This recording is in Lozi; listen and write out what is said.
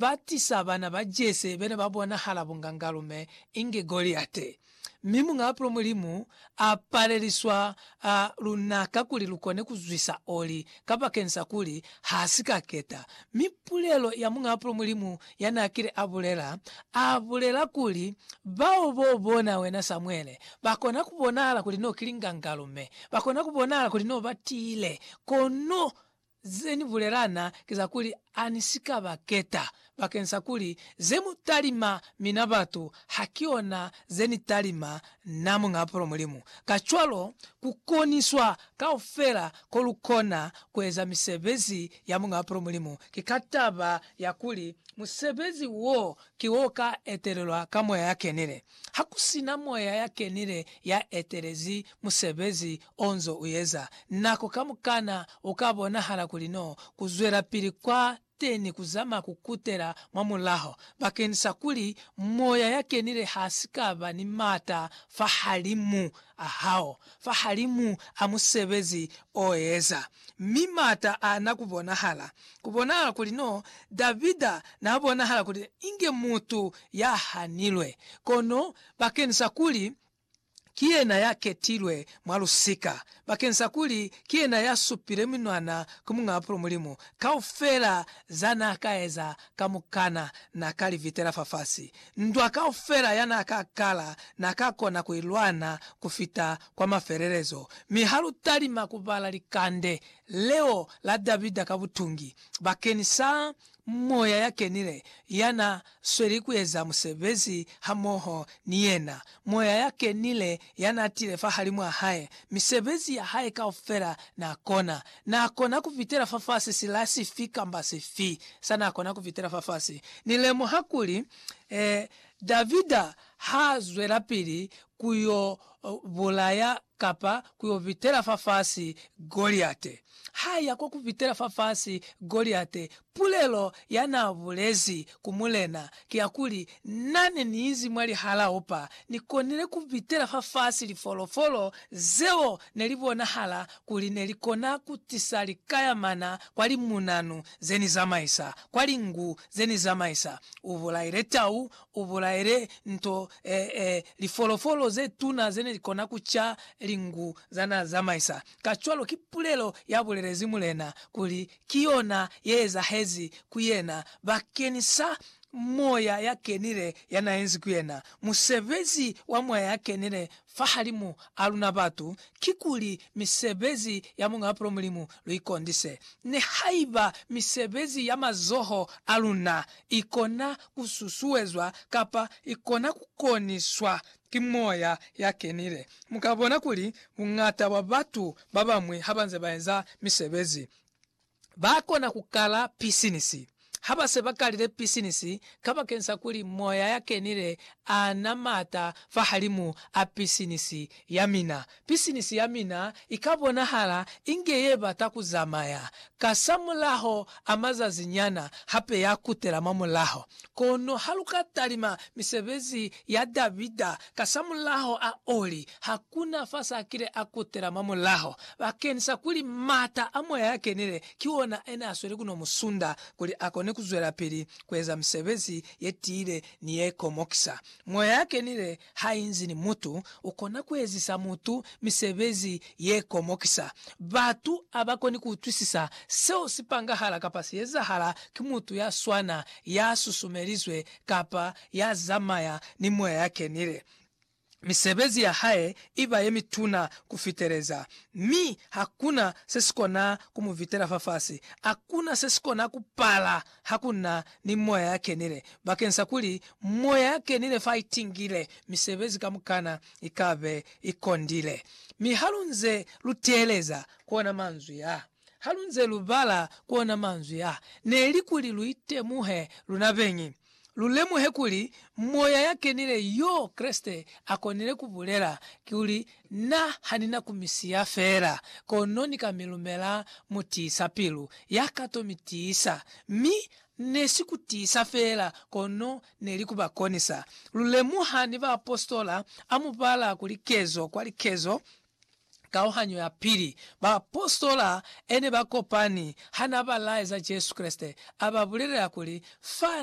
Ba tisa bana ba Jese bene ba bonahala bungangalume inge Goliate, mi Muñaa Pulo Mulimu a paleliswa luna kakuli lu kone ku zwisa oli kabakensa kuli ha si ka keta. Mi pulelo ya Muñaa Pulo Mulimu ya na kile a bulela, a bulela kuli, Bao bo bona wena Samuele, ba kona ku bonahala kuli no ki lingangalume, ba kona ku bonahala kuli no ba tiile, kono Ze ni bulelana ki za kuli ha ni si ka ba keta, bakeng sa kuli ze mu talima mina batu ha ki ona ze ni talima na, Muñ'a Apolo Mulimu. Kacwalo, ku koniswa kaufela ko lu kona ku eza misebezi ya Muñ'a Apolo Mulimu ki ka taba ya kuli musebezi wo ki wo ka etelelwa ka Moya ya Kenile. Ha ku si na Moya ya Kenile ya etelezi musebezi onzo uyeza nako kamukana uka bonahala kuli no kuzwelapili kwa teni kuzama kukutela mwamulaho bakeni sa kuli Moya ya Kenile hasikaba ni mata fahalimu ahao, fahalimu a musebezi oeza. Mi mata ana kubonahala. Kubonahala kuli no Davida na bonahala kuli inge mutu ya hanilwe. Kono bakeni sa kuli ki yena ya ketilwe mwa lusika, bakeng sa kuli ki yena ya supile minwana ku Muñ'a Bapilo Mulimu. Kaufela za n'a ka eza kamukana n'a ka li vitela fafasi. Ndwa kaufela ya n'a ka kala n'a ka kona ku i lwana ku fita kwa mafelelezo. Mi ha lu talima ku bala likande leo la Davida ka butungi bakeñisa Moya ya Kenile ya na sweli ku eza musebezi hamoho ni yena. Moya ya Kenile ya na tile fahalimw'a hae. Misebezi ya hae kaufela n'a kona. N'a kona ku fitela fafasi sila sifi kamba sifi sa n'a kona ku fitela fafasi. Ni lemuha kuli, eh, Davida h'a zwelapili ku y'o bulaya kapa ku yo pitela fafasi Goliate. Ha ya kwa ku pitela fafasi Goliate, pulelo ya n'a bulezi ku mulena ki ya kuli, Na ne ni izi mwa lihalao pa, ni konile ku pitela fafasi lifolofolo zeo ne li bonahala kuli ne li kona ku tisa likayamana kwa limunanu ze ni zamaisa, kwa linku ze ni zamaisa. U bulaile tau, U bulaile nto, ee, lifolofolo ze tuna ze ne li kona ku ca lingu za n'a zamaisa. Kacwalo ki pulelo ya bulelezi mulena, kuli ki yona ye ezahezi ku yena bakeni sa Moya ya Kenile ya n'a enzi ku yena. Musebezi wa Moya ya Kenile fahalimu a luna batu, kikuli misebezi ya Muñ'a Bupilo Mulimu luikondise, nihaiba misebezi ya mazoho a luna ikona kususuezwa kapa ikona kukoniswa ki Moya ya Kenile. Mukabona kuli buñata bwa batu babañwi habanze baeza misebezi, ba kona ku kala pisinisi ha ba se ba kalile pisinisi kabakeni sa kuli Moya ya Kenile a na m'ata fahalimu a pisinisi ya mina. Pisinisi ya mina i ka bonahala inge ye bata ku zamaya. Kasamulaho a mazazi nyana, hape ya kutela mwa mulaho. Kono ha lu ka talima misebezi ya Davida, kasamulaho a oli, Hakuna fa sa kile a kutela mwa mulaho bakeñisa kuli m'ata a Moya ya Kenile ki ona a ne a sweli ku no mu sunda kuli a kone ku zwelapili ku eza misebezi ye tiile ni ye komokisa. Moya ya Kenile ha inzi ni mutu, u kona ku ezisa mutu misebezi ye komokisa. Batu ha ba koni ku utwisisa seo si pangahala kapa si ezahala ki mutu ya swana ya susumelizwe kapa ya zamaya ni Moya ya Kenile. Misebezi ya hae i ba ye mituna ku fiteleza, mi ha ku na se si kona ku mu vitela fafasi. A ku na se si kona ku pala ha ku na ni Moya ya Kenile, bakeng sa kuli Moya ya Kenile fa i tingile, misebezi kamukana i ka be i kondile. Mi ha lu nze lu teeleza ku ona manzwi a. Ha lu nze lu bala ku ona manzwi a, ne li kuli lu itemuhe luna beñi, lu lemuhe kuli Moya ya kenile yo Kreste a konile ku bulela, kikuli, Na ha ni na ku mi siya fela, kono ni ka mi lumela mutiisa-pilu, ya ka to mi tiisa. Mi ne si ku tiisa fela, kono ne li ku ba konisa. Lu lemuha ni baapositola a mu bala kuli kezo kwa likezo, kauhanyo ya pili, baapositola ene ba kopani hana ba laeza Jesu Kreste, a ba bulelela kuli, Fa